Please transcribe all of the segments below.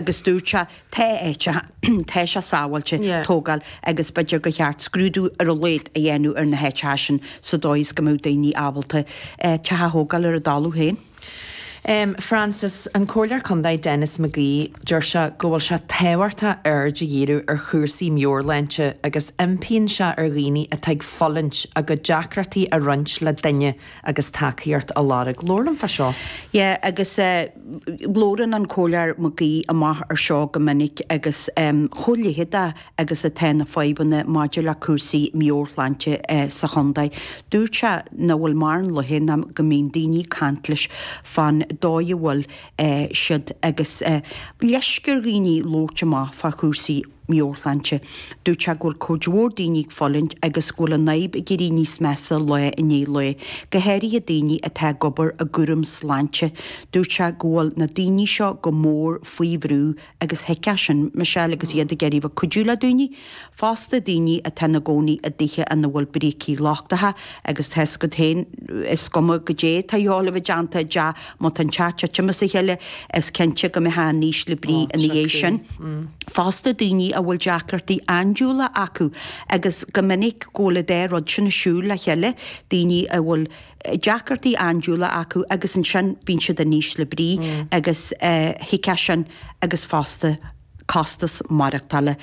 agus dúirt sé, Tá áiteacha, tá sé sábháilte tógáil agus b'fhéidir gur cheart scrúdú ar a laghad a dhéanamh ar na háiteacha sin sa dóigh is go mbeadh daoine ábalta teach a thógáil ar a dtalamh féin. Francis, an Comhairleoir Contae Denis McGee, deir sé go bhfuil sé tábhachtach aird a dhíriú ar chúrsaí meabhairshláinte agus impíonn sé ar dhaoine atá ag fulaingt a gcuid deacrachtaí a roinnt le duine agus tacaíocht a lorg. Labhair linn fá dtaobh de seo. Yeah, agus. Labhrann an Comhairleoir McGee amach ar seo go minic agus chomh leitheadach agus atá na fadhbanna maidir le cúrsaí meabhairshláinte sa chontae, dúirt sé nach bhfuil mórán laethe nach mbíonn daoine ag caint leis fán dóigh a bhfuil siad agus leisc ar dhaoine labhairt amach fá chúrsaí. meabhairshláinte. Dúirt sé go bhfuil cuid mhór daoine ag fulaingt agus go bhfuil an fhadhb ag éirí níos measa lá i ndiaidh lae, go háirithe daoine atá ag obair i gcúram sláinte. Dúirt sé go bhfuil na daoine seo go mór faoi bhrú agus thuigfeá sin Michelle agus iad ag iarraidh a bheith ag cuidiú le daoine fosta, daoine atá ina gcónaí i dtithe ina bhfuil brící lochtach agus tá fhios agat féin, is cuma goidé atá tú a dhéanamh i dtaobh de Má tá an teach ag titim as a chéile, is cinnte go mbeidh tú in ísle brí ina dhiaidh sin fosta, daoine a bhfuil deacrachtaí andúile acu agus go minic go bhfuil an dá rud sin ag siúl le chéile, daoine a bhfuil deacrachtaí andúile acu agus ansin bíonn siad in ísle brí agus thuigfeá sin agus fosta costas maireachtála,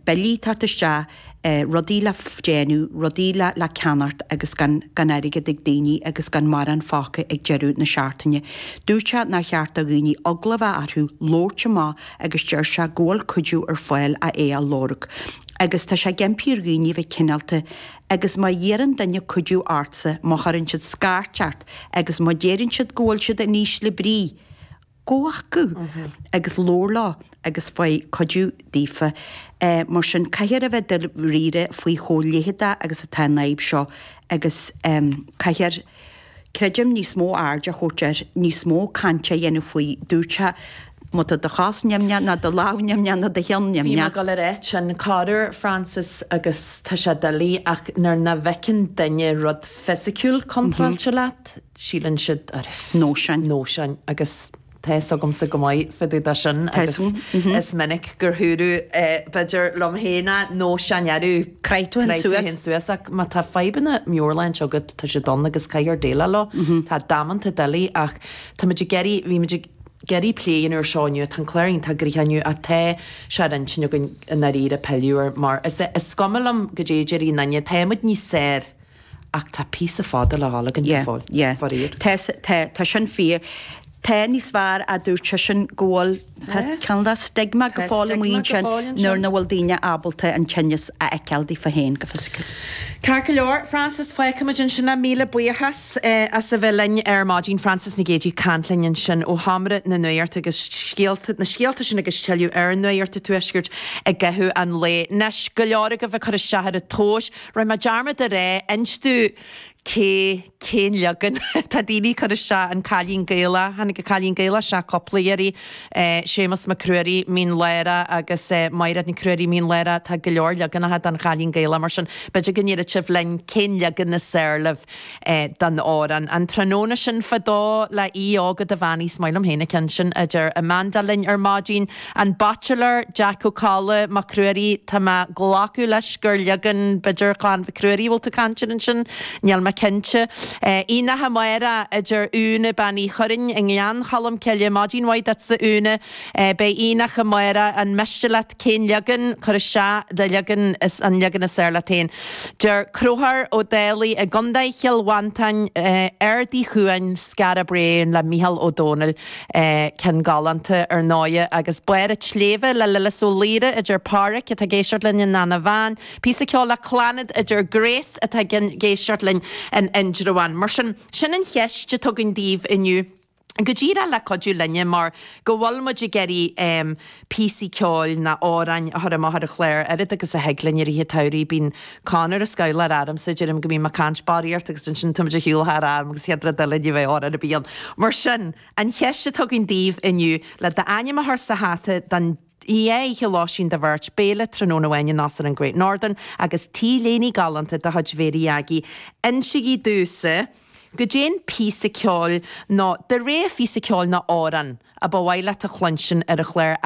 billí ag teacht isteach. rudaí le déanamh, rudaí le ceannacht agus gan airgead ag daoine agus gan mórán fágtha ag deireadh na seachtaine. Dúirt sé nár cheart do dhaoine eagla bheith orthu labhairt amach agus deir sé go bhfuil cuidiú ar fáil ach é a lorg agus tá sé ag impí ar dhaoine bheith cineálta agus má iarrann duine cuidiú ortsa, má chuireann siad scairt ort agus má deireann siad go bhfuil siad in ísle brí, gabh chucu agus labhair leo agus faigh cuidiú daofa. Mar sin, caithfear a bheith daríre faoi chomh leitheadach agus atá an fhadhb seo agus caithfear, creidim, níos mó aird a thabhairt air, níos mó cainte a dhéanamh faoi. Dúirt sé, má tá do chos nimhneach ná do lámh nimhneach ná do cheann nimhneach, gheall ar a thiteann tú orthu, Francis, agus tá sé doiligh ach nuair nach bhfeiceann duine rud fisiciúil contráilte leat, síleann siad, á, nóisean, nóisean, agus tá fhios agamsa go maith fá dtaobh de sin agus is minic gur dúradh é, b'fhéidir, liom féin á, nóisean, arú. Craith tú fhéin suas, ach má tá fadhbanna meabhairshláinte agat, tá siad ann agus caithfear déileáil leo. Tá damanta doiligh ach táimid ag iarraidh, bhímid ag iarraidh pilleadh ar seo inniu, tá an clár iontach gnoitheach inniu ach tá sé ar intinn againn i ndáiríre pilleadh air mar is cuma liom goidé a déarfaidh aon nduine, táimid níos saor. Ach tá píosa fada le dhul againn go Yeah, fóill, yeah. faraor. Tá, tá, tá sin fíor. Tá, agus mar a dúirt seisean go bhfuil, tá Yeah. cineál de stigma go Tá fóill amuigh stigma go ansin fóill ansin. nuair nach bhfuil daoine ábalta an tinneas a fheiceáil daofa féin go fisiciúil. Ceart go leor, Frances, feicfimid ansin é. Míle buíochas as a bheith linn ar maidin. Frances Nic Géadaigh ag caint linn ansin ó Sheomra na Nuachta agus scéalta, na scéalta sin agus tuilleadh ar Nuacht an Tuaiscirt i gcaitheamh an lae. Anois, go leor agaibh ag cur isteach ar an tomhais! Rinne mé dearmad a rá inis domh cé cén leagan atá daoine ag cur isteach an cailín Gaelach tháinig an Cailín Gaelach isteach cúpla iarraidh ó Séamus Mac Ruairí Mín Lárach agus ó Mairéad Nic Ruairí Mín Lárach tá go leor leaganacha den Chailín Gaelach mar sin b'fhéidir go ndéarfadh sibh linn cén leagan is fearr libh é den amhrán. An tráthnóna sin fadó le Aodh Óg Ó Duibheannaigh. Is maith liom féin an ceann sin a deir Amanda linn ar maidin. An Baitsiléir, Jeaic Ó Cadhla, Mac Ruairí Tá mé glacadh leis gur leagan, b'fhéidir, Chlann Mhic Ruairí a bhfuil tú ag caint air ansin, níl mé cinnte. Beidh Aonach Amárach, a deir Úna, Bean Uí Churraoin i nGleann Cholm Cille, Maidin mhaith duitse, Úna. Beidh Aonach Amárach, an miste leat cén leagan? Cuir isteach do leagan, is an leagan is fhearr leat féin. Deir Conchúr Ó Dálaigh i gContae Chill Mhantáin, 'Aird Uí Chuain, Skara Brae', le Mícheál Ó Domhnaill, ceann galánta ar ndóigh, agus 'Barr an tSléibhe' le Lillis Ó Laoire, a deir Pádhraic, atá ag éisteacht linn, in Eanach Mheáin, píosa ceoil le Clannad, a deir Grace, atá ag éisteacht linn in Indreabhán. Mar sin, sin an cheist atá agam daoibh inniu. go díreach le cuidiú linne mar go bhfuil muid ag iarraidh píosaí ceoil nó amhráin a chur amach ar an chlár, oiread agus a thig linn. I rith an tsamhraidh bíonn Conor a' scolladh ormsa, deirim go mbím ag caint barraíocht agus ansin tá muid ar shiúl thar am agus chéad rud eile ní bheidh amhrán ar bith ann. Mar sin, an cheist atá agam daoibh inniu, le d'ainm a chur sa hata don oíche lóistín do bheirt, béile tráthnóna amháin in Óstán an Great Northern agus T-léine galánta de chuid Mhary Aggie, insigí domhsa, goidé an píosa ceoil nó do rogha phíosa ceoil nó amhrán a ba mhaith leat a chluinstin ar an chlár a.